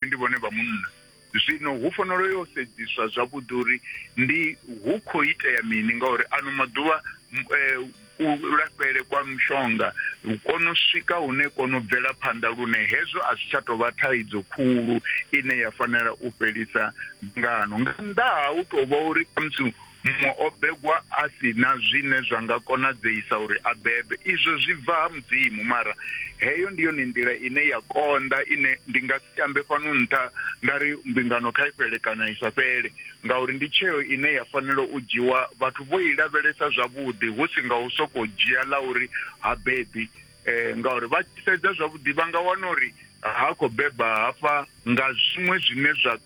ndi vhone vha munna zwino hu fanelo yo sedziswa zwavhuḓi uri ndi hu khou itea mini ngauri ano maḓuvha eh, u lafhele kwa mushonga kono swika hune kono bvela phanḓa lune hezwo a zwi tsha tou vha thaidzo khulu ine ya fanela u fhelisa ngano nga nnḓa ha u tou vha uri khamusi Muṅwe o begwa a si na zwine zwa nga konadzeisa uri a bebe. Izwo zwi bva ha Mudzimu, mara heyo ndi yone nḓila ine ya konḓa ine ndi nga si ambe fhano nṱha nda ri mbingano kha i fhele kana i sa fhele, ngauri ndi tsheo ine ya fanela u dzhiwa vhathu vho i lavhelesa zwavhuḓi hu si nga u sokou dzhia ḽa uri ha bebi. Ngauri vha tshi sedza zwavhuḓi vha nga wana uri ha khou beba hafha nga zwiṅwe zwine zwa.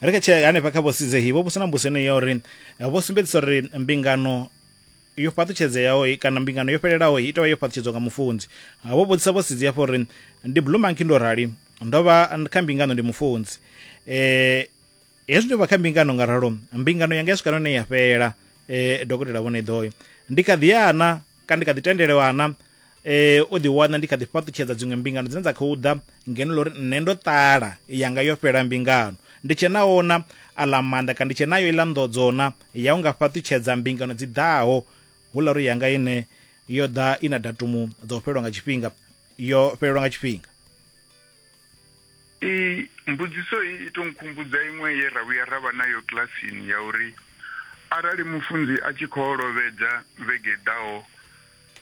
ri khe tshee hanefha kha vho sizehi vho vhusa na mbuso ine ya uri eh, vho sumbedzisa uri mbingano yo fhaṱutshedzeaho kana mbingano yo fhelelaho i tovha yo fhaṱutshedzwa nga mufunzi ah, vho vhudzisa vho sidzi hafho uri ndi blue monkey ndo rali ndo vha kha mbingano ndi mufunzi eh hezwi ndo vha kha mbingano nga ralo mbingano yanga ya swika none ya fhela eh dokotela vhone ḓoyo ndi kha ḓiyana kana ndi kha ḓi tendelwana eh o ḓi wana ndi kha ḓi fhaṱutshedza dziṅwe mbingano dzine dza khou ḓa ngeno lori nṋe ndo ṱala yanga yo fhela mbingano ndi tshe na ona aḽa maanḓa kana ndi tshe nayo iḽa nḓodzona ya u nga fhaṱutshedza mbingano dzi ḓaho hu ḽa uri yanga ine yo ḓa i na datumu ḓo fhelelwa nga tshifhinga yo fhelelwa nga tshifhinga Iyi mbudziso iyi ito nkhumbudza iṅwe ye ra vhuya ra vha nayo kilasini ya uri arali mufunzi a tshi khou lovhedza vhege i ḓaho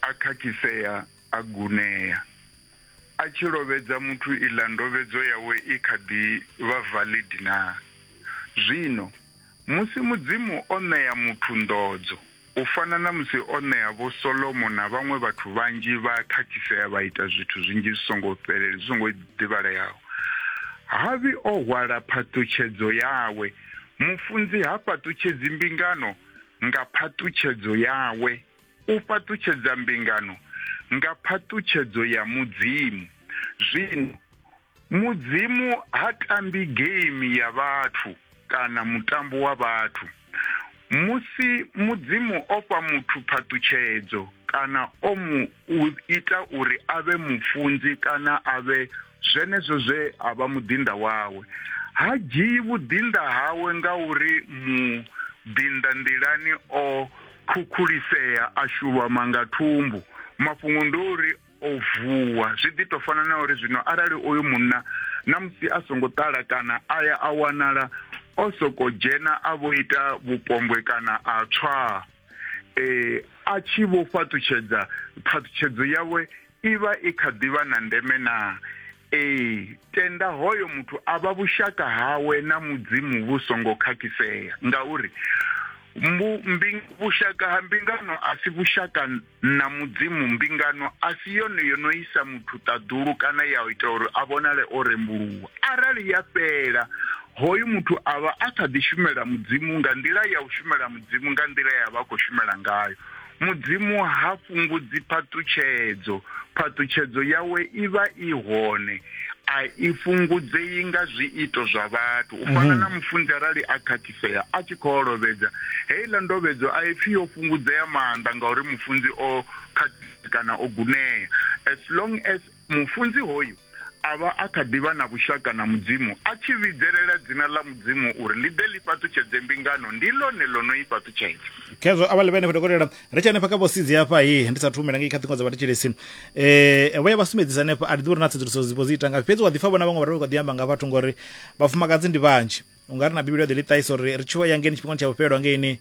a khakhisea a gunea. A tshi lovhedza muthu iḽa ndovhedzo yawe i kha ḓi vha valid naa? Zwino, musi Mudzimu o ṋea muthu nḓodzo, U fana na musi o ṋea Vho Solomo na vhaṅwe vhathu vhanzhi vha khakhisea vha ita zwithu zwinzhi zwi songo fhelela, zwi songo ḓivhaleaho. Harvey o hwala phaṱutshedzo yawe. Mufunzi ha fhaṱutshedzi mbingano nga phaṱutshedzo yawe. U fhaṱutshedza mbingano nga phaṱutshedzo ya Mudzimu. Zwino, mudzimu ha tambi game ya vhathu kana mutambo wa vhathu musi mudzimu o fha muthu phaṱutshedzo kana o mu ita uri a vhe mufunzi kana a vhe zwenezwo zwe a vha muḓinḓa wawe ha dzhii vhuḓinḓa hawe nga uri muḓinḓa nḓilani o khukhulisea a shulwama nga thumbu mafhungo ndi uri O vuwa. Zwi ḓi tou fana na uri zwino arali oyo munna ṋamusi a songo ṱala kana a ya a wanala o sokou dzhena a vho ita vhupombwe kana a tswaa, e, a tshi vho fhaṱutshedza, phaṱhutshedzo yawe i vha i kha ḓi vha na ndeme naa? Ee, tenda hoyo muthu a vha vhushaka hawe na Mudzimu vhu songo khakhisea, ngauri mbu, mbi, vhushaka ha mbingano a si vhushaka Nṋa Mudzimu, mbingano a si yone yo no isa muthu ṱaḓulu kana ya ita uri a vhonale o rembuluwa. Arali ya fhela, hoyu muthu a vha a kha ḓi shumela Mudzimu nga nḓila ya u shumela Mudzimu nga nḓila ye a vha a khou shumela ngayo. Mudzimu ha fhungudzi phaṱutshedzo. Phaṱutshedzo yawe i vha i hone, a i fhungudzei nga zwiito zwa vhathu. U fana na mufunzi arali a kha. fhedzisea a tshi khou olovhedza. Heiḽa ndovhedzo a i pfi yo fhungudzea maanḓa ngauri mufunzi o khakhea kana o gunea. As long as mufunzi hoyu a vha a kha ḓi vha na vhushaka na Mudzimu, a tshi vhidzelela dzina ḽa Mudzimu uri ḽi ḓe ḽi fhaṱutshedze mbingano, ndi ḽone ḽo no i fhaṱutshedza. Khezwo a vha ḽi vha henefho dokotela. Ri tshe henefha kha vho Sidzi hafha he ndi sa thu humela ngei kha ṱhingo dza vhathetshelesi. Eh vho ya vha sumbedzisa henefha a ri ḓivhi uri na tsedzuluso dzi vho dzi ita ngafhi fhedzi wa ḓi pfa vhona vhaṅwe vha ri vha kho ḓi amba nga vhathu ngori vhafumakadzi ndi vhanzhi. u nga ri na bivhili ya ḓi ḽi ṱahisa uri ri tshuwa yangeni tshifhingani tsha vhufhelwa ngeini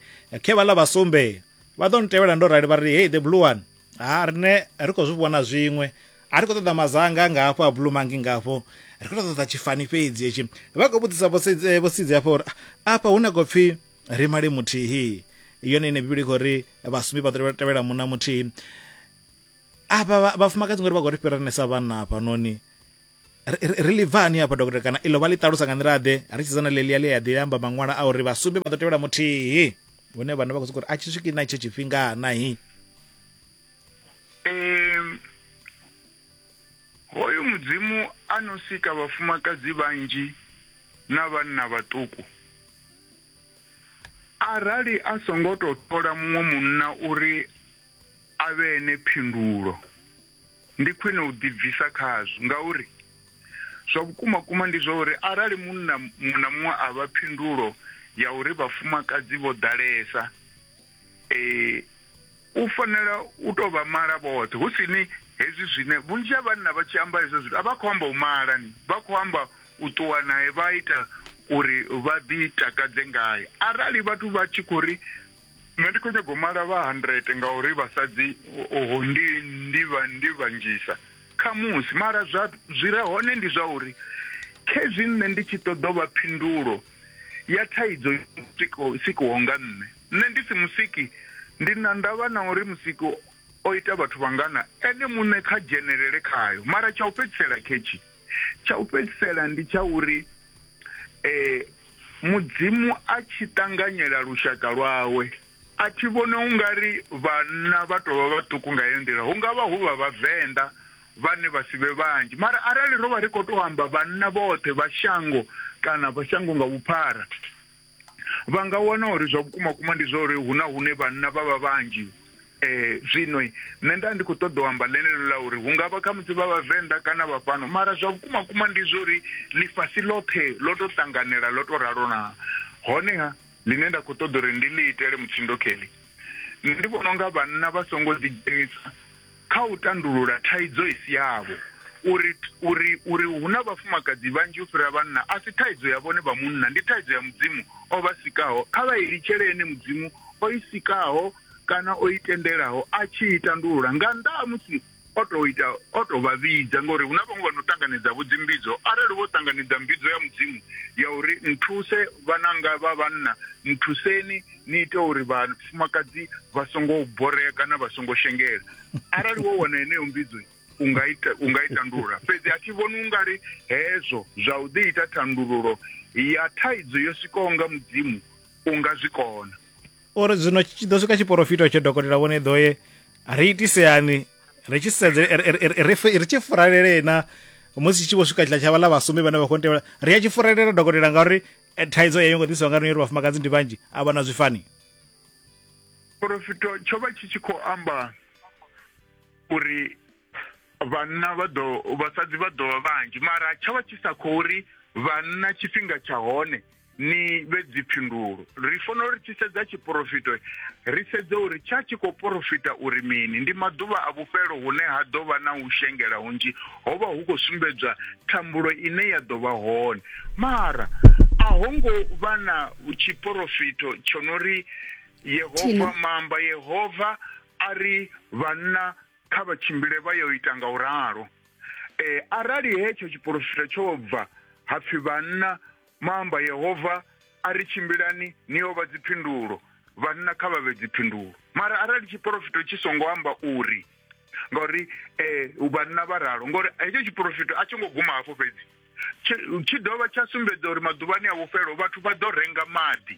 khe vhaḽa vha sumbe vha ḓo ni tevhela ndo rali vha ri hei the blue one ha rine ri khou zwi vhona zwiṅwe a ri khou ṱoḓa mazanga nga hafho a blue mangi nga hafho ri khou ṱoḓa tshifani fhedzi hetshi vha khou vhudzisa vhosidzi hafho uri afha hu na khou pfhi ri male muthihi yone ine bivhili i khou ri vhasumbi vha ḓo tevhela muna muthihi afha vhafumakadzi ngori vha khou ri fhiranesa vhanna hafhanoni ri ḽi bva hani hafha dokotela kana iḽo vha ḽi ṱalusa nga nḓila ḓe ri tshidza na ḽelia ḽi a ḓi amba maṅwala a uri vhasumbe vha ḓo tevhela muthihi hune vhana vha khou sokou uri a tshi swiki na itsho tshifhinga nahi hoyu mudzimu a no sika vhafumakadzi vhanzhi na vhanna vhaṱuku arali a songo tou thola muṅwe munna uri a vhe ene phindulo Ndi khwine u ḓibvisa khazwo ngauri zwa vhukumakuma ndi zwa uri arali munna muṅwe na muṅwe a vha phindulo ya uri vhafumakadzi vho ḓalesa, e, u fanela u tou vha mala vhoṱhe, hu si ni hezwi zwine vhunzhi ha vhanna vha tshi amba hezwo zwithu a vha khou amba u mala, ni vha khou amba u ṱuwa nae vha ita uri vha ḓi takadze ngae. Arali vhathu vha tshi khou ri Nṋe ndi khou nyaga u mala vha 100 ngauri vhasadzi oho ndi ndi vha ndi vhanzhisa khamusi mara zwa zwi re hone ndi zwa uri khezwi nṋe ndi tshi ṱoḓa vha phindulo ya thaidzo sikiho nga nṋe nṋe ndi si musiki ndi na ndavha na uri musiki o ita vhathu vhangana ene muṋe kha dzhenelele khayo mara tsha u fhedzisela khetshi Tsha u fhedzisela ndi tsha uri eh, mudzimu a tshi ṱanganyela lushaka lwawe a thi vhone u nga ri vhanna vha tovha vhaṱuku nga heyo nḓila hu nga vha hu vha vhavenḓa vhane vha si vhe vhanzhi mara arali ro vha ri khou tou amba vhanna vhoṱhe vha shango kana vha shango nga vhuphara vha nga wana uri zwa vhukuma kuma ndi zwa uri hu na hune vhanna vha vha vhanzhi eh zwino nṋe nda ndi khou ṱoḓa u amba ḽeneḽo ḽa uri hu nga vha khamusi vha vhavenḓa kana vha fhano mara zwa vhukuma kuma ndi zwa uri ḽifhasi ḽoṱhe ḽo tou ṱanganela ḽo tou ralo na honeha ḽine nda khou ṱoḓa uri ndi ḽi itele mutsindo kelly nṋe ndi vhona unga vhanna vha songo ḓidzhenisa kha u tandulula thaidzo i si yavho. Uri, uri, uri hu na vhafumakadzi vhanzhi u fhira vhanna a si thaidzo ya vhone vha munna, ndi thaidzo ya Mudzimu o vha sikaho. Kha vha i litshele Ene Mudzimu o i sikaho kana o i tendelaho a tshi i tandulula nga nnḓa ha musi o tou ita, o tou vha vhidza. Ngauri hu na vhaṅwe vha no ṱanganedza-vho dzimbidzo. Arali vho ṱanganedza mbidzo ya Mudzimu ya uri, Nthuse, vhananga vha vhanna, nthuseni, ni ite uri vhafumakadzi vha songo borea kana vha songo shengela arali wo wana heneyo mbidzo u nga ita u nga i tandulula fhedzi a thi vhoni ungari hezwo zwa u ḓi ita thandululo ya thaidzo yo sikaho nga mudzimu u nga zwi kona uri zwino tshi ḓo swika tshiporofito tsho dokotela vhone ḓo ye ri itiseani ri tshi sedze ri tshi furalele na musi tshi vho swika tshila tsha vhaḽa vhasumbi vhane vha khou ntevhela ri a tshi furalela dokotela ngauri Eh, thaidzo yeyo ngo ḓisiwa nga rine ri vhafumakadzi ndi vhanzhi a vha na zwifani porofito tsho vha tshi tshi khou amba uri vhanna vha ḓo vhasadzi vha ḓovha vhanzhi mara tsho vha tshi sa khou ri vhanna tshifhinga tsha hone ni vhe dziphindulo ri fanela uri tshi sedza tshiporofito ri sedze uri tsha tshi khou porofita uri mini ndi maḓuvha a vhufhelo hune ha ḓo vha na u shengela hunzhi ho vha hu khou sumbedzwa thambulo ine ya ḓo vha hone mara a ho ngo vha na tshiporofito tsho no ri yehova maamba yehova a ri vhanna kha vha tshimbile vha yo ita nga u ralo um eh, arali hetsho tshiporofito tsho bva ha pfhi vhanna maamba yehova a ri tshimbilani ni yo vha dziphindulo vhanna kha vha vhe dziphindulo mara arali tshiporofito tshi songo amba uri ngauri um vhanna vha ralo ngauri hetsho tshiporofito a tsho ngo guma hafho fhedzi tshi dovha tsha sumbedza uri maḓuvhani a vhufhelo vhathu vha ḓo renga maḓi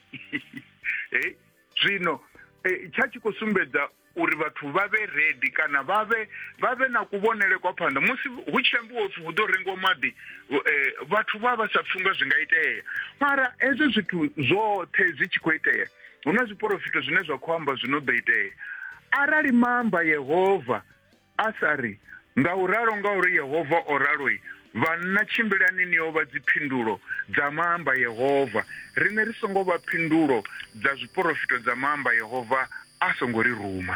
e zwino e, tsha tshi khou sumbedza uri vhathu vha vhe redi kana vha vhe vha vhe na kuvhonele kwa phanḓa musi hu tshi ambiwa upfhi hu ḓo rengiwa maḓi eh, vhathu vha vha sa pfunga zwi nga itea mara hezwo zwithu zwoṱhe zwi tshi khou itea Hu na zwiporofito zwine zwa khou amba zwino ḓo itea. Arali maamba Yehova a sa ri, Nga u ralo nga uri Yehova o raloi, vhanna tshimbilani ni yo vha dziphindulo dza maamba Yehova, riṋe ri songo vha phindulo dza zwiporofito dza maamba Yehova a songo ri ruma.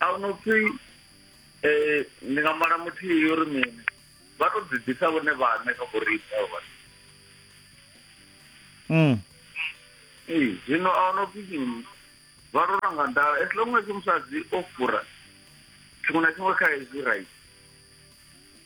a hu no pfi um ndi nga mala muthihi yo ri mini vha tou ḓi ḓisa vhone vhaṋe kha vhoriṋe avho vhathu Mm. ee zwino a hu no pfi mini vha tou ranga nḓala as long as musadzi o fura tshiṅwe na tshiṅwe kha hezwi right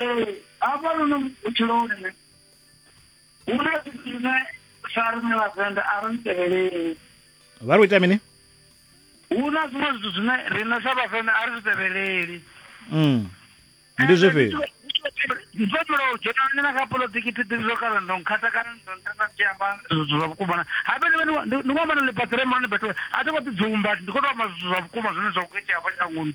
Ee, hafha luno vhutshiloni nṋe hu na zwithu zwine sa riṋe vhavenḓa a ri ntevheleli vha ri u ita mini hu na zwiṅwe zwithu zwine riṋe sa vhavenḓa a ri zwi tevheleli mm. ndi zwifhio ndi tshi vho u dzhena nṋe na kha polotiki thi ḓivhi zwo kana ndo nkhatha kana ndo ntenda ndi tshi amba zwithu zwa vhukuma na habe ndi vha ndi vha na ḽipaṱi re mani bethe a thi khou ḓi dzumba ndi khou tou amba zwithu zwa vhukuma zwine zwa khou itea hafha shangoni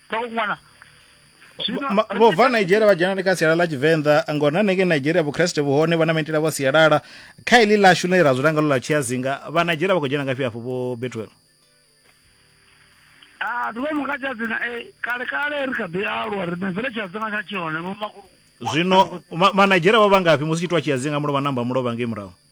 vha ṅwana vho bva nigeria vha dzhenani kha sialala ḽa tshivenḓa ngori na hanengei nigeria vhukreste vhuhone vha na maitele avho sialala kha iḽi ḽashu ḽine ra dzula ngalo ḽa tshiazinga vha nigeria vha khou dzhena ngafhi afho vho betwell a ḓuvha mu kha tshiazinga e eh, kale kale ri kha ḓi alwa ri mvele tshiazinga tsha tshihone vhomakulu zwino manigeria vha vha ngafhi musi tshitwa tshiazinga mulovha namba mulovha ngei murahu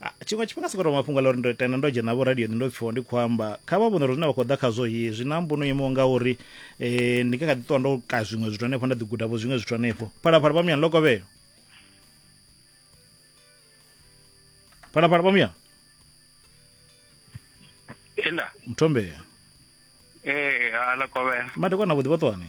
Ah, tshiṅwe tshifhinga sokoto mafhungo a ḽa uri ndo tenda ndo dzhena vho radioni ndo pfiwa ndi khou amba kha vha vhone uri zwine vha khou ḓa khazwo hi zwi na mbuno imaho nga uri um ndi nga kha ḓi ṱuwa ndo ka zwiṅwe zwithu hanefho nda ḓi guda vho zwiṅwe zwithu hanefho phalaphala vha muyani lokovhelo phalaphala vha muyani Ela. mthombea Eh, ala kovela. Madekwana vhuḓi vhoṱwani.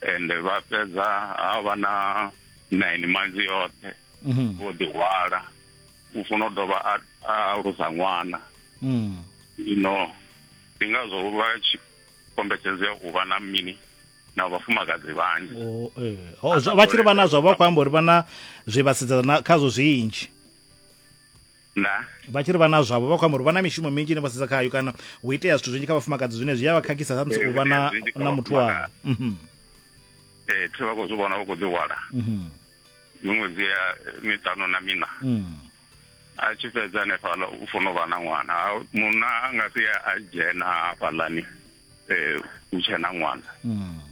ende vha fhedza ha vha na nine months yoṱhe mhm. vho ḓihwala u funa u dovha a alusa ṅwana mm. ino ndi ngazwo vha tshi kombetshedzea u vha na mini na vhafumakadzi vhanzhi oh, eh. oh, vha tshi ri vha nazwo vha khou amba uri vha na zwe vha sedzana khazwo zwinzhi nda vha tshi ri vha na zwavho vha khou amba uri vha na mishumo minzhi ine vha sedza khayo kana hu itea zwithu zwinzhi kha vhafumakadzi zwine zwi a vha khakhisa samusi u vha na na muthu wavho mhm. ee thi vha khou zwi vhona vha khou ḓihwala mhm. miṅwedzi ya miṱanu na mina mhm. a tshi fhedza hanefhala u funa u vha na ṅwana munna a nga si a dzhena hafhalani um u tshe na ṅwana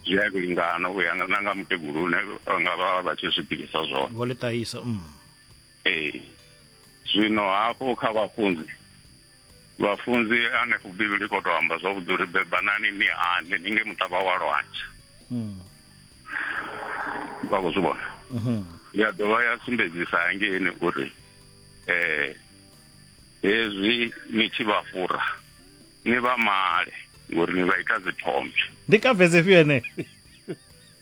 zwi a lingana u ya na nga mukegulu une nga vha vha tshi zwi bilisa zwone vho ḽi ṱahisa ee zwino hafhu kha vhafunzi vhafunzi hanefho bivhili khou tou amba zwavhuḓi uri bebanani ni hande ni nge muṱavha wa lwantsha hmm. vha khou zwi vhona mhm. ya dovha ya sumbedzisa hangeini uri um hezwi ni tshi vha fura ni vha male ngori ni vha ita dzithombe ndi kavhedze fhio ene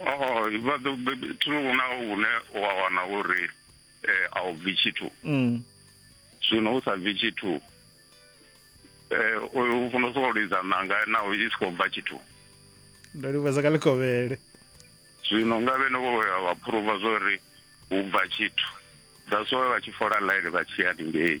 oh vha ḓo thulu huna hune wa wana uri eh, a u bvi tshithu mm. zwino u sa bvi tshithu um u funa u sokou lidza ṋanga naho i si khou bva tshithu ndo livheza ka ḽikovhele zwino nga vhene vho ya vha phuruva zwo ri hu bva tshithu that's why vha tshi fola ḽaini vha tshi ya lingei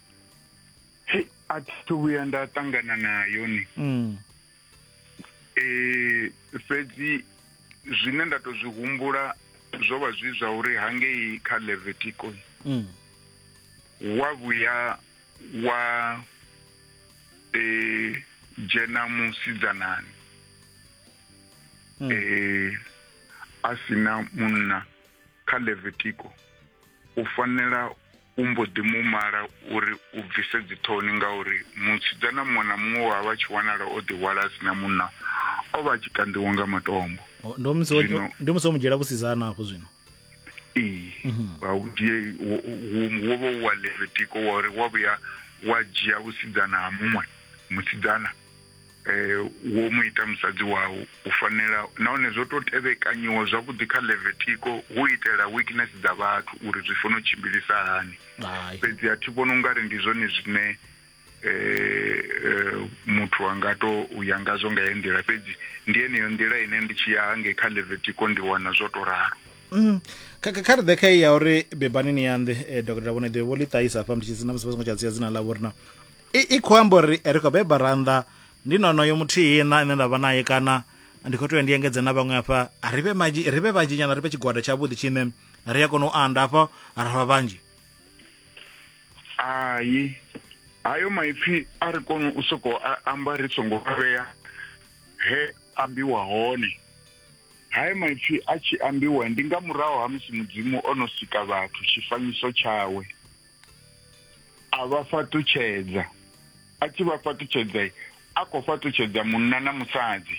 Hey, a thi thu vhuya nda ṱangana nayo ni mm. eh fhedzi zwine nda to zwi humbula zwo vha zwi zwa uri hangei kha levetico mm. wa vhuya wa eh dzhena musidzanani mm. eh a sina munna kha levetico u fanela u mbo ḓi mu mala uri u bvise dziṱhoni ngauri musidzana muṅwe na muṅwe wa vha tshi wanala o ḓihwala a sina munna o vha a tshi kanḓiwa nga matombo ndo musi ndo musi o mu dzhiela vhusidzana hafho zwino ee mhm. vha u dzhie wo vha wa levitiko wa uri wa vhuya wa dzhia vhusidzana ha muṅwe musidzana Wo mu ita musadzi wau. U fanela, nahone zwo tou tevhekanyiwa zwavhuḓi kha Levitiko, hu u itela weakness dza vhathu uri zwi fanela u tshimbilisa hani. Hai. Fhedzi a thi vhoni u nga ri ndi zwone zwine muthu a nga tou ya ngazwo nga heyo nḓila, fhedzi ndi yeneyo nḓila ine ndi tshi ya hangei kha Levitiko ndi wana zwo tou ralo. Kha kha kha ri ḓe kha iyi ya uri bebani ni ya nḓe, Dokotela Vho Neḓi vho ḽi ṱahisa hafha ndi tshi na musi vha songo tsha dzhia dzina ḽavho uri na i, i khou amba uri ri khou beba rannḓa ndi nonoyo muthihi na ine nda vha naye kana ndi khou tea ndi engedze na vhaṅwe afha ri vhe manzhi ri vhe vhanzhi nyana ri vhe tshigwada tshavhuḓi tshine ri a kona u anda afha ra vha vhanzhi hayi hayo maipfi a ri koni u soko amba ri songo vhea he ambiwa hone hayo maipfi a tshi ambiwa ndi nga murahu ha musi mudzimu o no sika vhathu tshifanyiso tshawe a vha fhaṱutshedza a tshi vha fhaṱutshedza a khou fhaṱutshedza munna na musadzi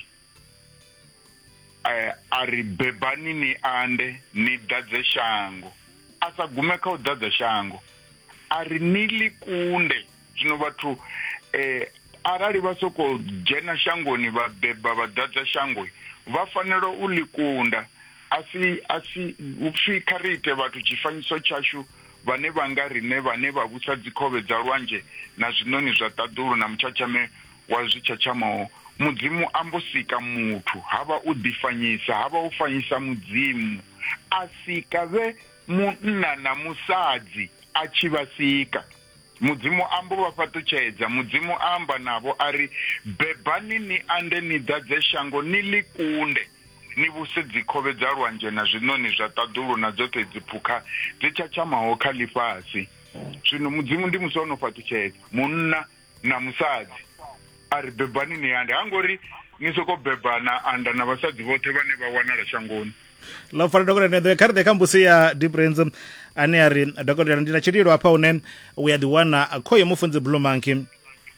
eh, a ri bebani ni ande ni ḓadze shango a sa gume kha u ḓadza shango a ri ni ḽi kunde zwino vhathu um arali vha sokou dzhena shangoni vha beba vha ḓadza shango vha fanela u ḽi kunda a si a si upfhi kha ri ite vhathu tshifanyiso tshashu vhane vha nga riṋe vhane vha vhusa dzikhovhe dza lwanzhe na zwiṋoni zwa ṱaḓulu na mutshatshame wa zwitshatshamaho mudzimu a mbo sika muthu ha vha u ḓifanyisa ha vha u fanyisa mudzimu a sika vhe munna na musadzi a tshi vha sika Mudzimu a mbo vha fhaṱutshedza. Mudzimu a amba navho a ri, Bebani ni ande ni ḓadze shango ni ḽi kunde, ni vhuse dzikhovhe dza lwanzhe na zwiṋoni zwa ṱaḓulu na dzoṱhe dziphukha dzi tshatshamaho kha ḽifhasi. Zwino Mudzimu ndi musi o no fhaṱutshedza munna na musadzi a ri, Bebani ni ande. Ha ngo ri, Ni sokou beba na anda na vhasadzi vhoṱhe vhane vha wanala shangoni. ḽo fara dokotela neḓoe kha ri ḓe kha mbusi ya difference ane a ri dokotela ndi na tshililo hafha hune u ya ḓiwana khoyo mufunzi blue monkey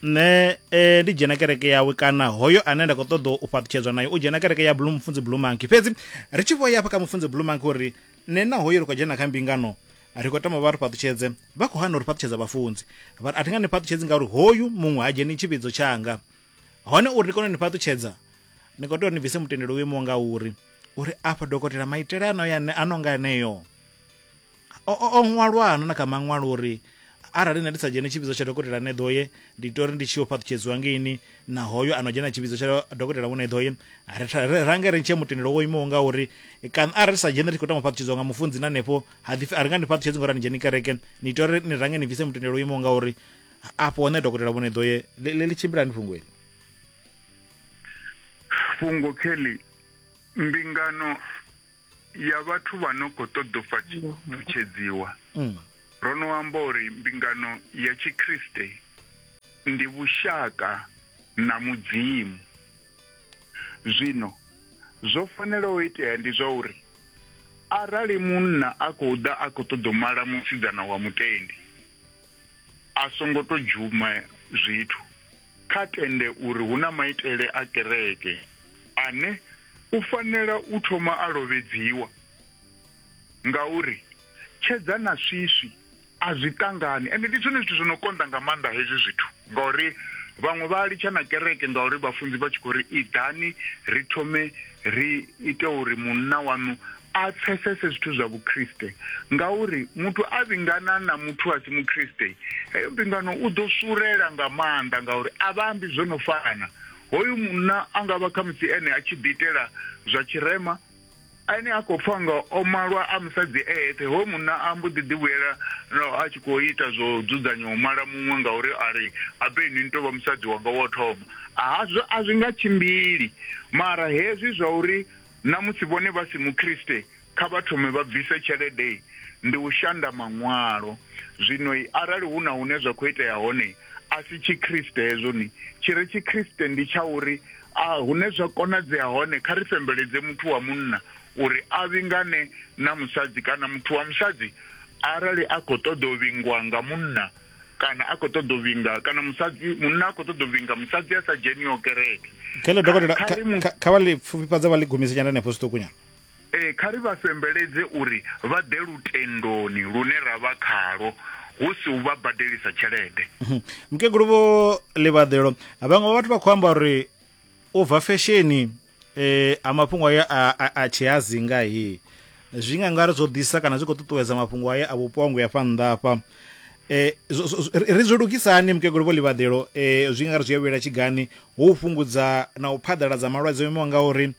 nṋe eh, ndi dzhena kereke yawe kana hoyo ane nda khou ṱoḓa u fhaṱutshedzwa nayo u dzhena kereke ya blue mufunzi blue monkey fhedzi ri tshi vho ya hafha kha mufunzi blue monkey uri nṋe na hoyo ri khou dzhena kha mbingano ri khou tama vha ri fhaṱutshedze vha khou hana uri fhaṱutshedza vhafunzi vha ri a thi nga ni fhaṱutshedzi ngauri hoyu muṅwe ha dzheni tshivhidzo tshanga hone uri ni kone u ni fhaṱutshedza ni khou tea uri ni bvise mutendelo wo imaho nga uri uri afha dokotela maitele ano ya ano nga eneyo o o- o ṅwalwa ano na kha maṅwalo uri arali nṋe ndi sa dzhene tshipidzo tsha dokotela ne ḓoye ndi tea uri ndi tshi yo fhaṱutshedziwa ngeini na hoyo ano dzhena tshipidzo tsha dokotela wone ḓoye ri tha- ri- range ri ntshe mutendelo wo imaho nga uri kana arali ri sa dzhene ri khou tama u fhaṱutshedziwa nga mufunzi na hanefho ha ḓi pfi a ri nga ndi fhaṱutshedzi ngori a ni dzheni kereke ni tea uri ni range ni bvise mutendelo wo imaho nga uri afho hone dokotela vhone ḓo ye ḽe ḽi tshimbila ni fhungo eli fhungo kelly mbingano ya vhathu vha no khou ṱoḓa u fhaṱutshedziwa mm. ro no amba uri mbingano ya tshikriste ndi vhushaka na mudzimu zwino zwo fanela u itea ndi zwa uri arali munna a khou ḓa a khou ṱoḓa u mala musidzana wa mutendi a songo to dzhuma zwithu kha tende uri hu na maitele a kereke ane u fanela u thoma a lovhedziwa ngauri tshedza na swiswi a zwi ṱangani ende ndi zwone zwithu zwo no konḓa nga maanḓa hezwi zwithu Ngauri vhaṅwe vha litsha na kereke ngauri vhafunzi vha tshi khou ri iḓani ri thome ri ite uri munna waṋu a pfesese zwithu zwa vhukriste ngauri muthu a vhingana na muthu a si mukriste heyo mbingano u ḓo surela nga maanḓa ngauri a vha ambi zwo no fana hoyu munna a nga vha khamusi ene a tshi ḓiitela zwa tshirema Ane a khou pfa nga o malwa a musadzi e eṱhe, hoyo munna a mbo ḓi ḓivhuyela naho a tshi khou ita zwo dzudzanya u mala muṅwe ngauri a ri, Habe inwi ni tou vha musadzi wanga wa u thoma. Hazwo a zwi nga tshimbili. Mara hezwi zwa uri na musi vhone vha si Mukriste kha vha thome vha bvise tshelede ndi u shanda Maṅwalo. Zwino arali hu na hune zwa khou itea hone, a si Tshikriste hezwo. Tshi re Tshikriste ndi tsha uri A Hune zwa konadzea hone, kha ri fembeledze muthu wa munna uri a vhingane na musadzi kana muthu wa musadzi arali a khou ṱoḓa u vhingwa nga munna kana a khou ṱoḓa u vhinga kana musadzi munna a khou ṱoḓa u vhinga musadzi a sa dzheniho kereke. Kha ri mu. Kha vha ḽi pfufhifhadze vha ḽi gumise nyana henefho zwiṱukunyana. Ee, kha ri vha fembeledze uri vha ḓe lutendoni lune ra vha khalwo, hu si u vha badelisa tshelede. Mukegulu Vho Ḽivhaḓelo, vhaṅwe vha vhathu vha khou amba uri u bva fesheni eh, ha mafhungo ayo a, a, a tshihazinga he zwi nga ngari zwo ḓisa kana zwi khou ṱuṱuwedza mafhungo ayo a vhupongwe afha nnḓa afha eh, zwo- zwo- zwo- ri zwi lugisa hani mukegulu Vho Ḽivhaḓelo eh, zwi nga ri zwi a vhuyela tshigani hu u fhungudza na u phaḓaladza malwadze o imaho nga uri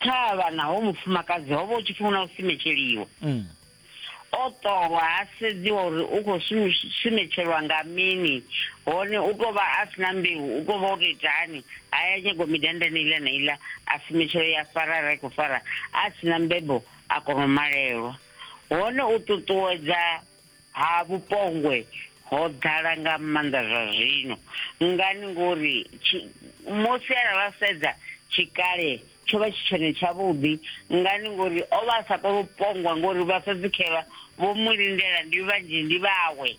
Thavha na ho mufumakadzi ho vha hu tshi pfi huna u simetsheliwa. Mm. O ṱolwa ha sedziwa uri u khou sumi- sumetshelwa nga mini hone u tou vha a si na mbeu, u tou vha o tou ita hani, ha ya nyagwa midandani iḽa na iḽa, a sumetshela ya fara arali a khou fara, a si na mbebo a kona u malelwa. Hone u ṱuṱuwedza. Ha vhupongwe ho ḓala nga maanḓa zwa zwino. Ngani? Ngori musi ara ra sedza tshikale tsho vha tshi tshone tshavhuḓi. Ngani? Ngori o vha a sa koni u pongwa ngori vhasadzi khe vha vho mu lindela ndi vhanzhi ndi vhawe.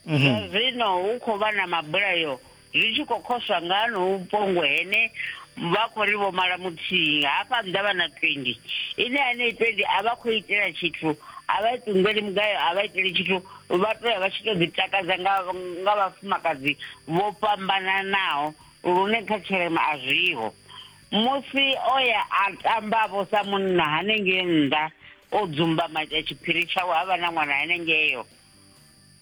mhm. zwino hu khou vha na mabulayo zwi tshi khou khoswa nga hanou pongo hene vha khou ri vho mala muthihi hafha nnḓa vha na twendi ine anei twendi a vha khou itela tshithu a vha ṱunḓeli mugayo a vha iteli tshithu vha to ya vha tshi to ḓi takadza nga nga vhafumakadzi vho fhambananaho lune kha tshirema a zwiho musi o ya a tamba vho sa munna hanengei nnḓa o dzumba matsha tshiphiri tshawe ha vha na ṅwana hanengeyo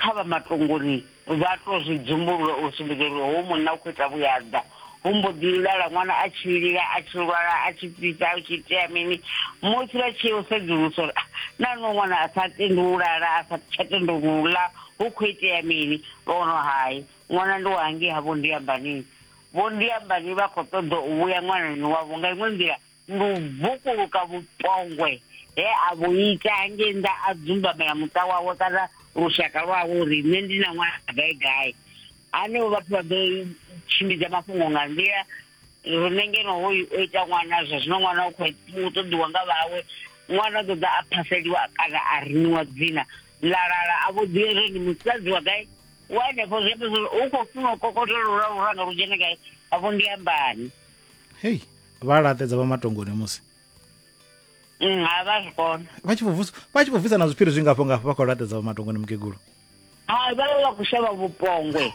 kha vha matongoni vha to zwi dzumbulula u sumbedza uri hoyu munna u khou ita vhuyaḓa hu mbo ḓi lala ṅwana a tshi lila a tshi lwala a tshi fhisa a tshi itea mini musi vha tshi u sedzulusa uri ah, na no ṅwana a sa tendi u lala a sa tsha tendi u ḽa hu khou itea mini vha wono hai ṅwana ndi wa hangei havho ndi ambanini vho ndi ambani vha khou ṱoḓa u vhuya ṅwanani wavho nga iṅwe nḓila Lu vukuluka vhupombwe he a vhu ita hangei nnḓa a dzumbamela muṱa wawe kana lushaka lwawe uri nṋe ndi na ṅwana gai gai. Hanevho vhathu vha ḓo tshimbidza mafhungo nga nḓila riṋe ngeno hoyu o ita ṅwana zwa zwino ṅwana u khou ṱoḓiwa nga vhawe ṅwana u ṱoḓa a phaseliwa kana a riniwa dzina ḽa lala a vho ḓivha zwo ndi musadzi wa gai wa henefho zwi amba zwori u khou funa u kokotela lura luranga lu dzhene gai afho ndi ambani. hei vha laṱedza vha matongoni musi mm, ha vha zwi kona vha tshi vhobvusa vha tshi vhobvusa na zwiphiri zwingafho ngafho vha khou laṱedza vha matongoni mukegulu ha vha vha khou shavha vhupongwe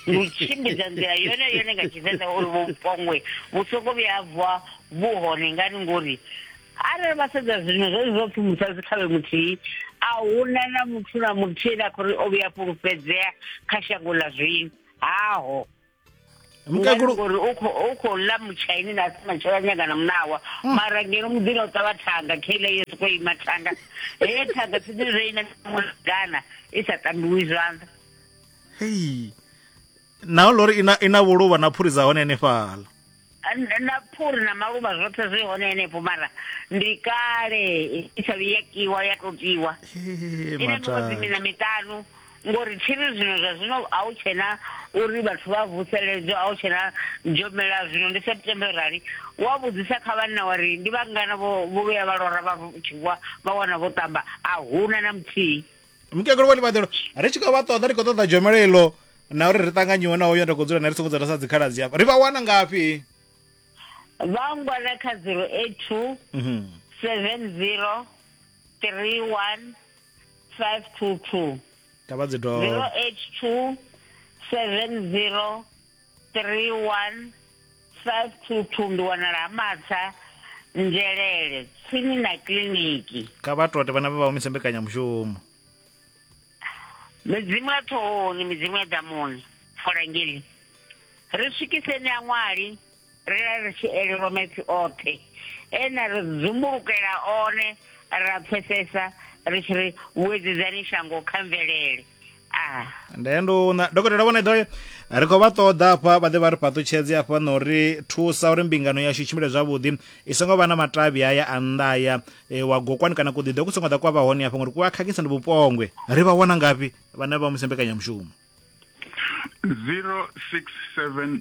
u tshimbidza nḓila yone yone nga tshivenḓa uri vhupongwe vhu songo vhuya bva vhu hone ngani ngori arali vha sedza zwino zwo zwo pfhi musadzi khavhe muthihi a huna na muthu na muthihi na khou ri o vhuya fhulufhedzea kha shango ḽa zwino haho mukegulu ngori u kho u kho ḽa mutshaini na si matshela nyanga na munawa hmm. mara ngeno muḓini o ṱavha thanga kheila yo soko ima thanga heye thanga tsini reina mugana i sa tambiwi zwanḓa hei naho lori ina ina vhuluvha na phuri dza hone henefhala na phuri na maluvha zwoṱhe zwi hone henefho mara ndi kale i sa vhuya kiwa ya to tiwa ine miṅwedzi mina miṱanu ngori tshiri zwino zwa zwino a u tshena uri vhathu vha vuseledzwa a u tshena dzhomela zwino ndi september rali wa vhudzisa kha vhanna wari ndi vhangana vho vhuya vha lora vha tshivwa vha wana vho tamba a huna na muthihi mukegulu wa ḽivhaḓelo ri tshi khou vha ṱoḓa ri khou ṱoḓa dzhomelo iḽo na uri ri ṱanganyiwe na hoyo nda khou dzula na ri songo dzula sa dzikhaladzi hafha ri vha wana ngafhi vha ngwana kha 082 70 31 522 tavha dzi dovha 082 70 3152 ndi wanala ha matsha nzhelele tsini na kiliniki kha vha tote vhana vha vha humise mbekanyamushumo midzimu ya ṱhohoni midzimu ya ḓamuni folangeli ri swikiseni a ṅwali ri a ri tshi elelwa maipfi oṱhe e na ri dzumbulukela one ra pfesesa ri tshi ri vhuedzedzani shango kha mvelele ah. ndenduna dokotela vhone ḓoyo ri khou vha ṱoḓa afha vha ḓe vha ri fhaṱutshedze afha na uri thusa uri mbingano yashu i tshimbile zwavhuḓi i songo vha na matavhi aya a nnḓa aya e, wa gokwani kana kuḓiḓo ku songo ḓa kwa vha hone afha ngori ku a khakhisa ndi vhupongwe ri vha wana ngafhi vhane vha musi mbekanyamushumo 067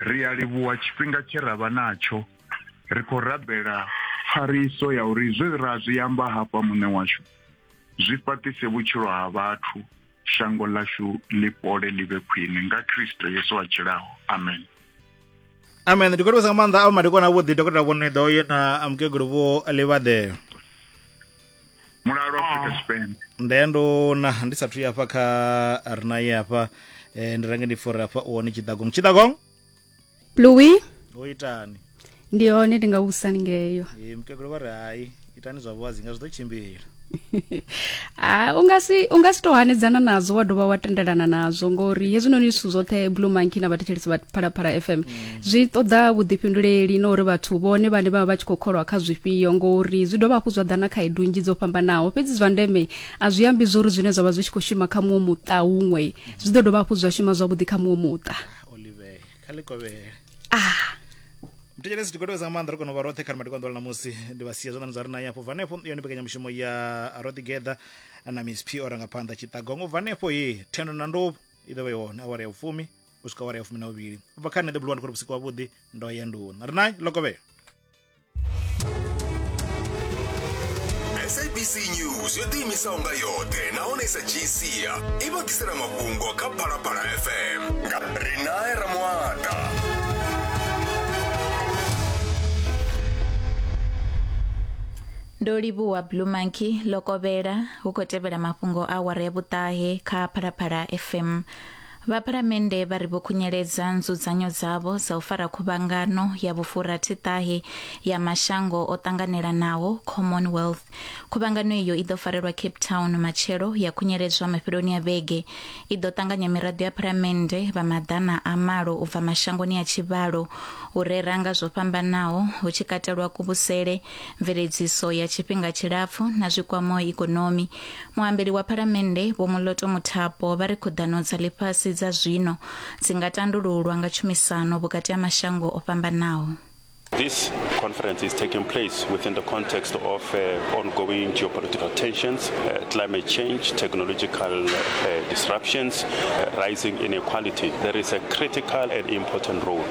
Ri a livhuwa tshifhinga tshe ra vha natsho. Ri khou rabela pfariso ya uri zwe ra zwi amba hafha Muṋe washu zwi fhaṱise vhutshilo ha vhathu, shango ḽashu ḽi fhole ḽi vhe khwine. Nga Kristo Yesu a tshilaho. Amen. Amen. Ndi khou livhusa nga maanḓa a vho madekwana avhuḓi, Dokotela Vho Nwiḓo na Mukegulu Vho Livhaḓe. mulalo afrika tshipembe nde ndo na ndi sathu ya hafha kha a re naye hafha eh, ndi range ndi fore hafha u hone tshidagong tshidagong Louis o itani ndi hone ndi nga vhusani ngeyo Eh, mukegulu vha ri hai itani zwa vhuwazi nga zwi ḓo tshimbila Ah, unga si unga si to hanedzana nazwo wa dovha wa tendelana nazwo ngori hezwinoni zwithu zwoṱhe blue monkey na vhathetshelesi vha phalaphala fm zwi ṱoḓa vhuḓifhinduleli na uri vhathu vhone vhane vha vha vha tshi khou kholwa kha zwifhio ngori zwi dovha hafhu zwa ḓa na khaedu nnzhi dzo fhambanaho fhedzi zwa ndeme a zwi ambi zwo uri zwine zwa vha zwi tshi khou shuma kha muṅwe muṱa huṅwe zwi ḓo dovha hafhu zwa shuma zwavhuḓi kha muṅwe muṱa olive kha likovhele ah mutetshelesi tikodovheza nga maanḓa ri kona u vha roṱhe kha rimati konḓola namusi ndi vha sia zwanḓani zwa ri nayo afho bva hanefho yone mbekanyamushumo ya roṱhe geḓa na miss p o rangaphanḓa tshiṱagongo bva hanefho ye thendo na ndovhu i ḓo vha i hone awara ya vhufumi u swika awara ya fumi na vhuvhili u bva kha nṋe ḓebuluwa ndi khou ri vhusiku wavhuḓi ndo ya nduni ri nayi lokovhela sabc news yo ḓiimisaho nga yoṱhe nahone sa gc a i vha ḓisela mafhungo kha phalaphala fm nga rinae ramuata ndo livhuwa blue monkey lokovhela hu khou tevhela mafhungo a awara ya vhuṱahe kha phalaphala fm Vhaphalamennde vha ri vho khunyeledza nzudzanyo dzavho dza u fara khuvhangano ya vhufurathi-ṱahe ya mashango o ṱanganelanaho, Commonwealth. Khuvhangano iyo i ḓo farelwa Cape Town matshelo ya khunyeledzwa mafheloni a vhege. I ḓo ṱanganya miraḓo ya phalamennde vha maḓana a malo u bva mashangoni a tshivhalo u rera nga zwo fhambanaho hu tshi katelwa kuvhusele, mveledziso ya tshifhinga tshilapfu na zwi kwamaho ikonomi. Muambeli wa Phalamennde Vho Moloto Muthapo vha ri khuḓano dza ḽifhasi dza zwino dzi nga tandululwa nga tshumisano vhukati ha mashango o fhambanaho. This conference is taking place within the context of uh, ongoing geopolitical tensions, uh, climate change, technological uh, disruptions, uh, rising inequality. There is a critical and important role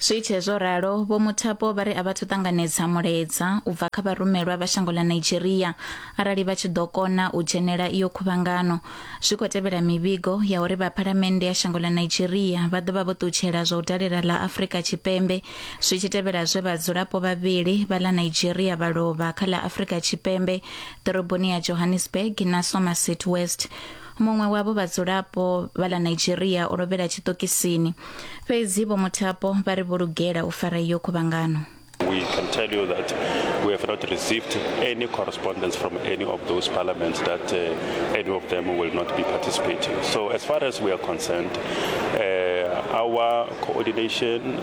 zwi itshe zwo ralo vho muthapo vha ri a vhathu ṱanganedza mulaedza u bva kha vharumelwa vha shango ḽa nigeria arali vha tshi ḓo kona u dzhenela iyo khuvhangano zwi khou tevhela mivhigo ya uri vha phalamennde ya shango ḽa nigeria vha ḓo vha vho ṱutshela zwa u dalela ḽa afrika tshipembe zwi tshi tevhela zwe vhadzulapo vhavhili vha ḽa nigeria vha lovha kha ḽa afrika tshipembe ḓoroboni ya johannesburg na somerset west Muṅwe wavho vhadzulapo vha ḽa Nigeria o lovhela tshiṱokisini. Fhedzi Vho Muthapo vha ri vho lugela u fara iyo khuvhangano. We can tell you that we have not received any correspondence from any of those parliaments that uh, any of them will not be participating. So as far as we are concerned, uh, our coordination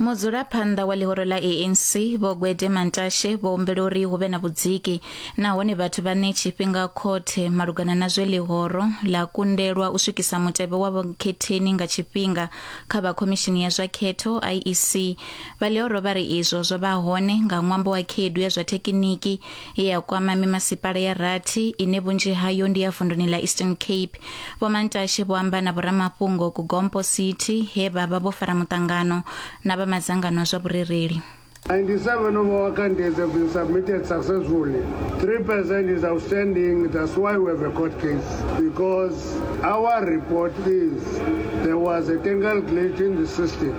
mudzulaphanḓa wa ḽihoro ḽa anc vho gwede mantashe vho humbela uri hu vhe na vhudziki nahone vhathu vha ne tshifhinga khothe malugana na zwe ḽihoro ḽa kundelwa u swikisa mutevhe wa vhakhetheni nga tshifhinga kha vha khomishini ya zwa khetho iec vha ḽihoro vha ri izwo zwo vha hone nga ṅwambo wa khaedu ya zwa thekiniki ye ya kwama mimasipala ya rathi ine vhunzhi hayo ndi ya vunduni ḽa eastern cape vho mantashe vho amba na vhoramafhungo ku gompo city he vha vha vho fara muṱangano na vha madzangano a zwa vhurereli 97 of our candidates have been submitted successfully. 3% is outstanding. That's why we have a court case. Because our report is there was a technical glitch in the system.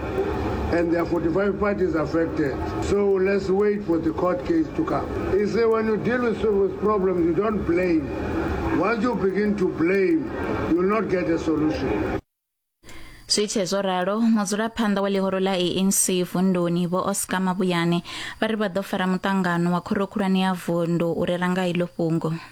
and there are 45 parties affected. So let's wait for the court case to come. He said, when you deal with serious problems, you don't blame. Once you begin to blame, you will not get a solution. zwi tshee zwo ralo mudzulaphanḓa wa ḽihoro ḽa anc vunduni vho oscar mabuyane vha ri vha ḓo fara muṱangano wa khoro khulwane ya vundu u rera nga iḽo fhungo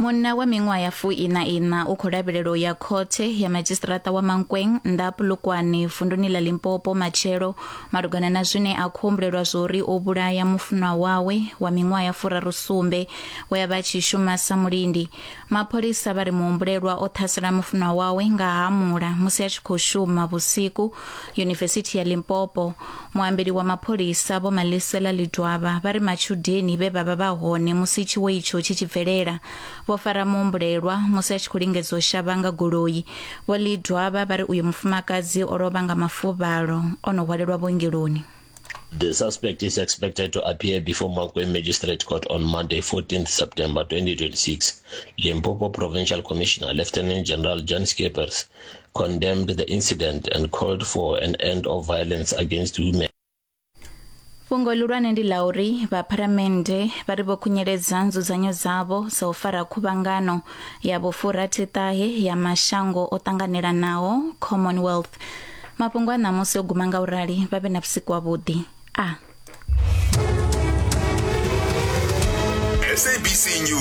Munna wa miṅwaha ya fuiṋa-iṋa u khou lavhelelwa u ya khothe ya madzhisiṱiraṱa wa Mankweng nnḓa ha Polokwane vunduni ḽa Limpopo matshelo malugana na zwine a khou humbulelwa zwori o vhulaya mufunwa wawe wa miṅwaha ya furaru sumbe we a vha tshi shuma sa mulindi. Mapholisa vha ri muhumbulelwa o ṱhasela mufunwa wawe nga hamula musi a tshi khou shuma vhusiku yunivesithi ya Limpopo Muambeli wa mapholisa Vho Malisela Lidwaba vha ri matshudeni vhe vha vha vha hone musi tshiwo itsho tshi tshi bvelela vho fara muhumbulelwa musi a tshi khou lingedza u shavha nga goloi. Vho Lidwaba vha ri uyo mufumakadzi o lovha nga mafuvhalo o no hwalelwa vhuongeloni. The suspect is expected to appear before Mankweng Magistrate Court on Monday, 14th September 2026. Limpopo Provincial Commissioner Lieutenant General Jan Scheepers condemned the incident and called for an end of violence against women. fhungo ḽihulwane ndi ḽa uri vhapharamennde vha ri vho khunyeledza nzudzanyo dzavho dza u fara khuvhangano ya vhufurathitahe ya mashango o ṱanganelanaho commonwealth mafhungo a ṋamusi o guma nga u rali vha vhe na vhusiku wavhuḓi a sabc news